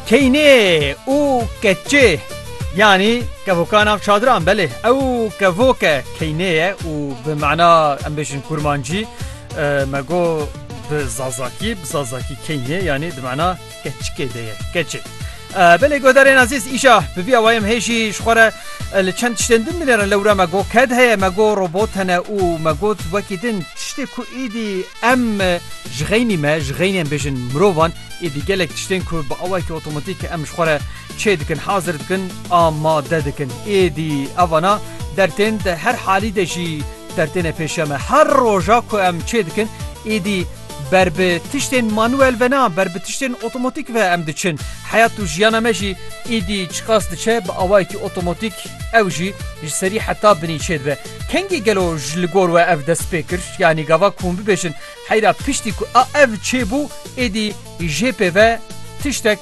Keynê û keçê yanî kevoka nav çadiran belê ew kevoke keynê ye û bi mana em bêjin kurmancî me go bi zazakî bi zazakî keynê yanî di mana keçikê de ye keçê. Belê godarên azîz îşa bi vî awayê em hêjî ji xwe re li çend tiştên din binêrin lewra me go ked heye me go robot hene û me got wekî din tiştê ku êdî Em ji xeynî me, ji xeynên bêjin mirovan êdî gelek tiştên ku bi awayekî otomatîk em ji xwe re çê dikin, hazir dikin, amade dikin. Êdî evana der tên di her halî de jî dertêne pêşiya me. Her roja ku em çê dikin êdî ber bi tiştên manuel ve na, ber bi tiştên otomatîk ve em diçin. Heyat û jiyana me jî êdî çiqas diçe bi awayekî otomatîk ew jî ji serî heta binî çê dibe. Kengî gelo ji li gor we ev dest pê kir? Yanî gava ku hûn bibêjin heyra piştî ku a ev çêbû êdî jê pê ve tiştek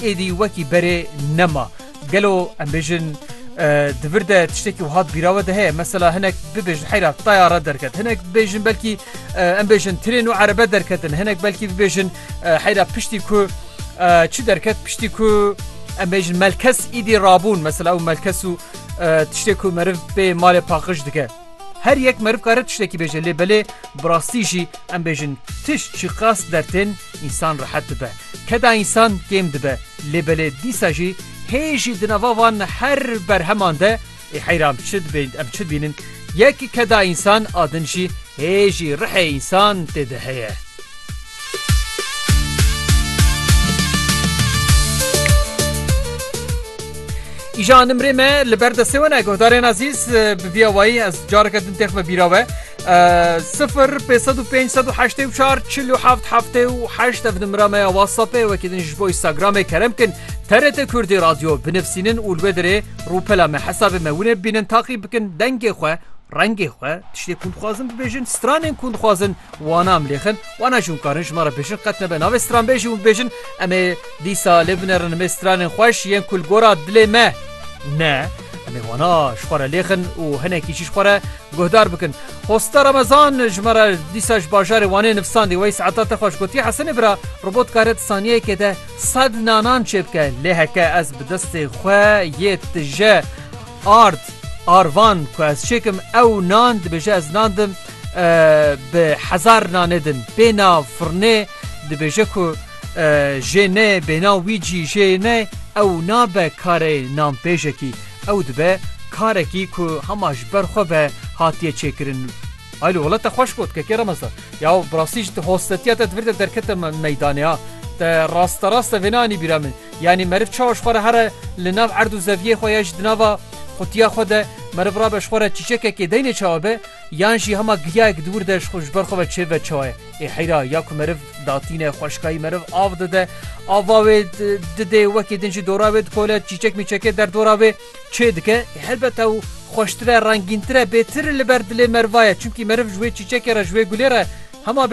êdî wekî berê nema. Gelo em bêjin di vir de tiştekî wiha di bîra we de heye mesela hinek bibêjin heyra tayare derket hinek bêjin belkî em bêjin tirên û erebe derketin hinek belkî bibêjin heyra piştî ku çi derket piştî ku em bêjin melkes êdî rabûn mesela ew melkes û Tiştê ku meriv pê malê paqij dike. Her yek meriv kare tiştekî bêje lê belê bi rastî jî em bêjin tişt jî qas dertên însan rehet dibe. Keda însan kêm dibe lê belê dîsa jî hê jî di nava van her berheman de ê heyran çi em çi dibînin yek keda însan a din jî hê jî rihê însan tê de heye. Îşa nimrê me li ber destê we ne guhdarên ezîz bi vîya wayî ez careke din têxme bîra we sifir pê sed û pênc sed û heştê û çar çil û heft heftê û heşt ev nimra me ya whatsappê wekî din ji bo instagramê kerem kin TRT Kurdî radyo binivîsînin û li wê dirê rûpela me hesabê me winê bînin taqî bikin dengê xwe rengê xwe tiştê kûn dixwazin bibêjin stranên kûn dixwazin Wana em lêxin, wana jî hûn karin ji me re bêjin qet nebe navê stranbêjî hûn bêjin em ê dîsa lê binerin mê stranên xweş yên ku li gora dilê me ne em ê wana ji xwe re lêxin û hinekî jî ji xwe re guhdar bikin. Hosta Remezan ji me re dîsa ji bajarê Wanê nivsandî wey saeta te xweş gotiye Hesenê bira robot dikare di saniyeyekê de sed nanan çêbike lê heke ez bi destê xwe yê tije ard arvan ku ez çêkim ew nan dibêje ez nan dim bi hezar nane din bêna firnê dibêje ku jê ne bêna wî cî jê ne ew nabe karê nanpêjekî ew dibe karekî ku hema ji ber xwe ve hatiye çêkirin Aylo wala te xweş got kekê remezda ya bi rastî ji hostetiya te divir te derkete meydanê ya te rasta rasta vêne anî bîra min yanî meriv çawa ji xwe re here li nav erd û zeviyê xwe ya ji di nava qutiya xwe de meriv rabe ji xwe re çîçekekê deynê çawa be Yan jî hema giryayek di wir de ji xwe ji ber xwe ve çêbibe çaye. Ê heyra ya ku meriv datîne xweşikayî meriv av dide, ava wê didê wekî din jî dora wê dikole, çîçek mîçekê derdora wê çê dike. Ê helbet ew xweştir e, rengîntir e, bêtir li ber dilê meriva ye. Çimkî meriv ji wê çîçekê re, ji wê gulê re hema be.